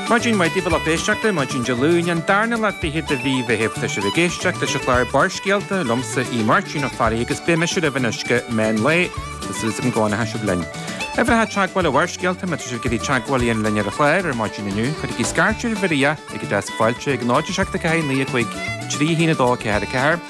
Maidin mhaith daoibh a lucht éisteachta maidin Dé Luain an darna lá fichead de mhí Mheithimh Tá sibh ag éisteacht leis an chlár Barrscéalta liomsa, Aodh Máirtín Ó Fearraigh, agus beidh mise libh anois go meán lae agus súil agam go bhfanfaidh sibh linn. Uimhreacha teagmhála Bharrscéalta, má tá sibh ag iarraidh teagmháil a dhéanamh linn ar an chlár ar maidin inniu, cuirigí scairt ar Mharia ag an deasc fáilte ag 0 7 4 9 5 3 1 2 4 4.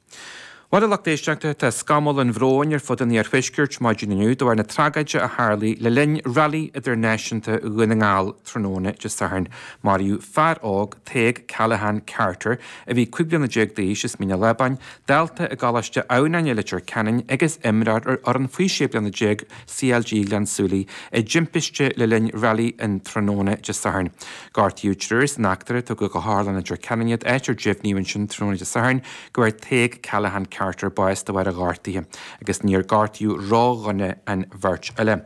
Bhuel, a lucht éisteachta, tá scamall an bhróin ar fud an iarthuaiscirt maidin inniu de bharr na tragóide a tharlaigh le linn Rally Idirnáisiúnta Dhún na nGall tráthnóna Dé Sathairn. Maraíodh fear óg, Tadhg Callaghan Carter, a bhí cúig bliana déag d'aois as Mín an Lábáin, dalta i gColáiste Adhamhnáin i Leitir Ceanainn agus imreoir ar fhoireann faoi sé bliana déag CLG Ghleann Súilí, i dtimpiste le linn Rally an tráthnóna Dé Sathairn. Gortaíodh triúr san eachtra, tugadh go hOtharlann Leitir Ceanainn iad, áit ar deimhníodh ansin tráthnóna Dé Sathairn go bhfuair Tadhg Callaghan Carter bás de bharr a ghortuithe agus níor gortaíodh ródhona an bheirt eile.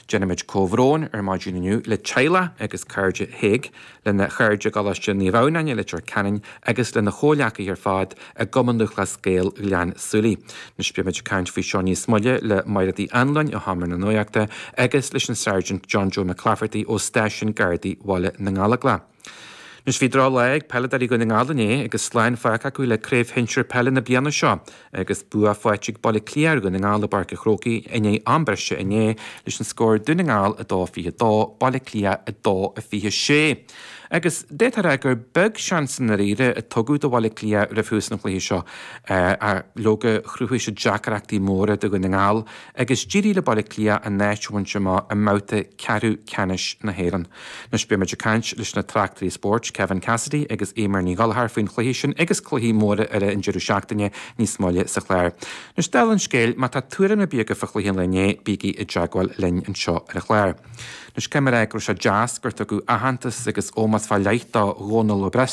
Déanaimid comhbhrón ar maidin inniu le teaghlach agus cairde Thaidhg, lena chairde i gColáiste Naomh Adhamhnáin i Leitir Ceanainn agus lena chomhghleacaithe ar fad i gCumann Lúthchleas Gael Ghleann tSúilí. Anois beimid ag caint faoi seo níos moille le Máire Uí Annluain ó Sheomra na Nuaíochta agus leis an Sergeant John Joe McClafferty ó Stáisiún Gardaí Bhaile na nGallóglach. Anois bhí drochlá ag peileadóirí Dhún na nGall inné agus slán fágtha acu le Craobh Shinsear Peile na bliana seo agus bua faighte ag Baile Átha Cliath ar Dhún na nGall i bPáirc an Chrócaigh i ndiaidh am breise inné leis an scór Dún na nGall 2 22 Baile Átha Cliath 2 26. Agus d'fhéadfá a rá gur beag seans i ndáiríre a tugadh do Bhaile Átha Cliath roimh thús an chluiche seo ach, leoga, chruthaigh siad deacrachtaí móra do Dhún na nGall agus d'éirigh le Baile Átha Cliath a n-áit a bhaint amach i mbabhta ceathrú ceannais na hÉireann. Anois beimid ag caint leis na tráchtairí spóirt, Kevin Cassidy agus Eimear Ní Ghallchóir, faoin chluiche sin agus cluichí móra eile an deireadh seachtaine níos moille sa chlár. Anois dála an scéil, má tá tuairim ar bith agaibh fá chluiche an lae inné, bígí i dteagmháil linn anseo ar an chlár. Anois caithfidh mé a rá go raibh sé deas gur tugadh aitheantas agus ómós fá leith do Dhomhnall Ó Bric,